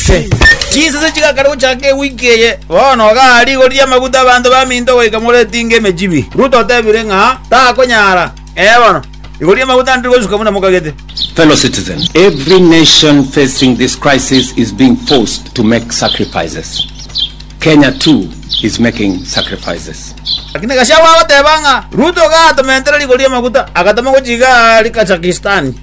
Inse. Chisese chigakare gochaka ewiki eye, bono ogaa rigori amaguta abanto baminto goika more etinga emechibi. Ruto otebire ng'a takonyara. Ee bono, rigori ri'amaguta ndiri gosuka buna mokagete. Fellow citizen, every nation facing this crisis is being forced to make sacrifices. Kenya too is making sacrifices. Lakini Gachagua agoteba ng'a Ruto ogaa tomentere rigori ri'amaguta, agatoma gochiiga Kazakhstan.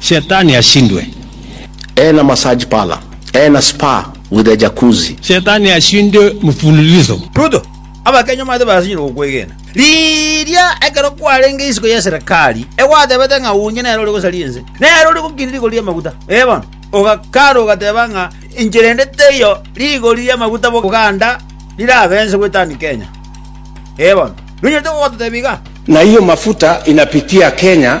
Shetani ashindwe. Eeh na massage parlour. Eeh na spa with a jacuzzi. Shetani ashindwe mfululizo. Ruto, Abakenya omanyete barasinyire gokwegena riria ekero kwarenge isiko y'eserekari egwatebete ng'a onye nere ore gosaria ense, nere ore gokiina rigori ri'amaguta. Ee bono, ogakara ogateba ng'a enchera ende teiyo rigori ri'amaguta Buganda rirabense gwetania Kenya. Ee bono, nonyarete gogototebia igaa? Na hiyo mafuta inapitia Kenya.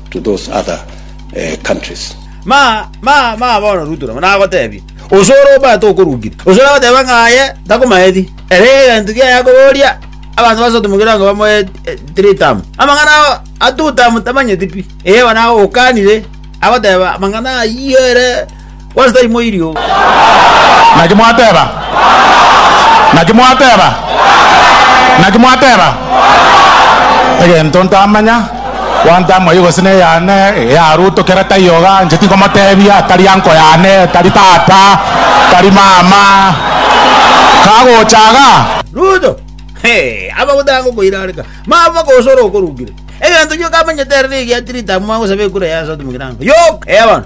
to those other eh, countries. Ma, ma, ma, bono Ruto nabo nagotebi, ose ore obwate okorugire, ose nagoteba ng'a aye takomaeti, ere egento kiaye akoboria abanto basote mogera onga bamoe eh, three term. Amang'ana ao a two term tamanyeti pi. Eye bono agokanire agoteba amang'ana ayio ere What's thy moiri o? Naki mwateba? Naki mwateba? Naki mwateba? Egento ntamanya, one time oyio gose neyane ya Ruto kera taiyo iga, inche tinkomotebia, tari uncle yane, tari tata, tari mama, kagocha iga. Ruto, Hee, aba gotaka gokoirareka. Mama gose ore okorukire. Egento gioka amanyete ere nigo giatirite amo agosaba ekura ya Sodom Girango. Yoka, eya bono.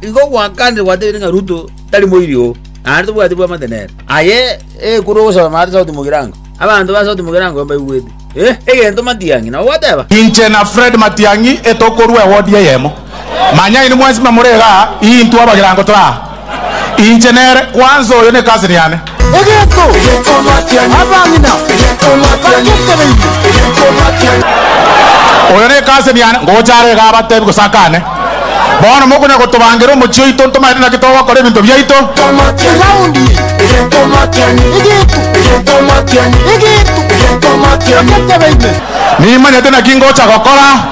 Igo gwakanire gwatebiire ng'a Ruto tari moiri oo, naende tobwati bw'amate nere. Aye ekura ogosoma ase sauti mogirango, abanto ba sauti mogirango mbaigwete, ee, egento Matiang'i nabo gwateba. Inche na Fred Matiang'i etokorua ewodi eyemo. Manya inwe mwensi mbe more igaa, intwe abagirango tore aa. Inche nere, kwanza oyo ne cousin yane. Egeto, abang'ina bagotebeire. Oyo ne case niane, ngocha are iga abatebi gose akane, Bono mokonya gotobangera omochie oito ntomaete naki togokora ebinto biaito. Egaondi egeto, egeto, egeto, bagotebeire. Nimanyete naki ngocha gokora.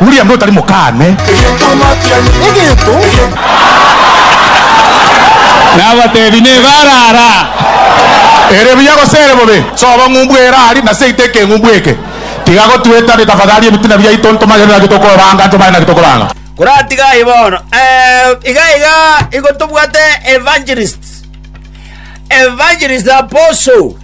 William notari mokane. Nabatebi nebara ara. Ere buya gose ere bobe? Soba ng'umbu ere ari, na seita ekeng'umbu eke. Tiga gotuetania tafadhali ebitina biaito ntomanye naki tokoranga ntomanye naki tokoranga. Koratiga aye bono eh, iga iga igo tobwate evangelist, evangelist apostle.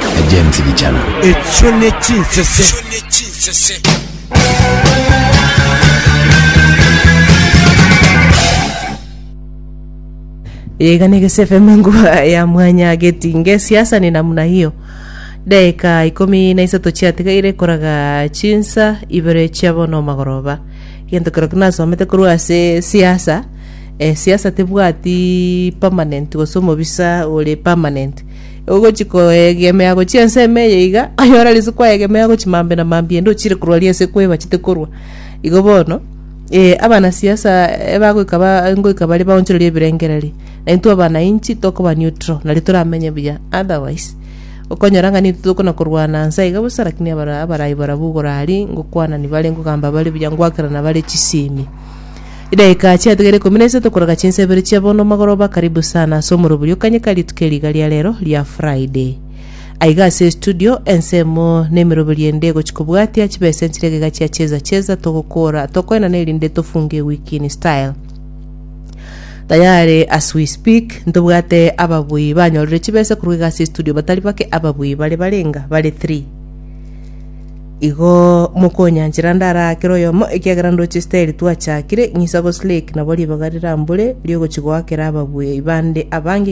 na James Bichana. Echio ne chinsese. Yega ne Gese FM nguba ya mwanya getinge siasa ni namna hiyo dakika ikumi na isato chiatigaire koraga chinsa ibere chia bono omagoroba gento kero kinasomete korwa ase siasa eh, siasa tebwati permanent gose omobisa ore permanent Ogochia koegemea gochia ense ime eye iga, aye ore risiku aegemea gochia mambe na mambi ende ochire korwa ria ase kweba chite korwa. Igo bono, ee, abanasiasa ebagoika ba- ngoika bare baonchorerie ebirengererio, na intwe abanainchi tokoba neutral, nari toramenye buya, otherwise okonyora ng'a nintwe tokona korwana nsa iga bosa lakini abara- abarai barabwo igoro aria ngokwana nibare ngogamba bare buya ngoakerana bare chisemi. Edaika chiatigare ikomi na isato korega chinsa ibere chia bono magoroba karibu sana ase omoroboriokanye ka rituko eri iga ria rero ria Friday. Aiga ase estudio, ensemo na emeroberi ende egochia kobwatia chibesa enchire egega chia Cheza Cheza togokora tokoenana erinde tofunge ewiki in style. Tayari as we speak ntobwate ababui banyorire chibesa korwa iga ase estudio batari bake ababui bare barenga bare three. Igo mokonyanchera ndarakere oyomo, ekiagera ndoche Isiraeli twachakire, ng'isa gose like nabo ribaga rirambore ri'ogochi goakera ababuya bande abange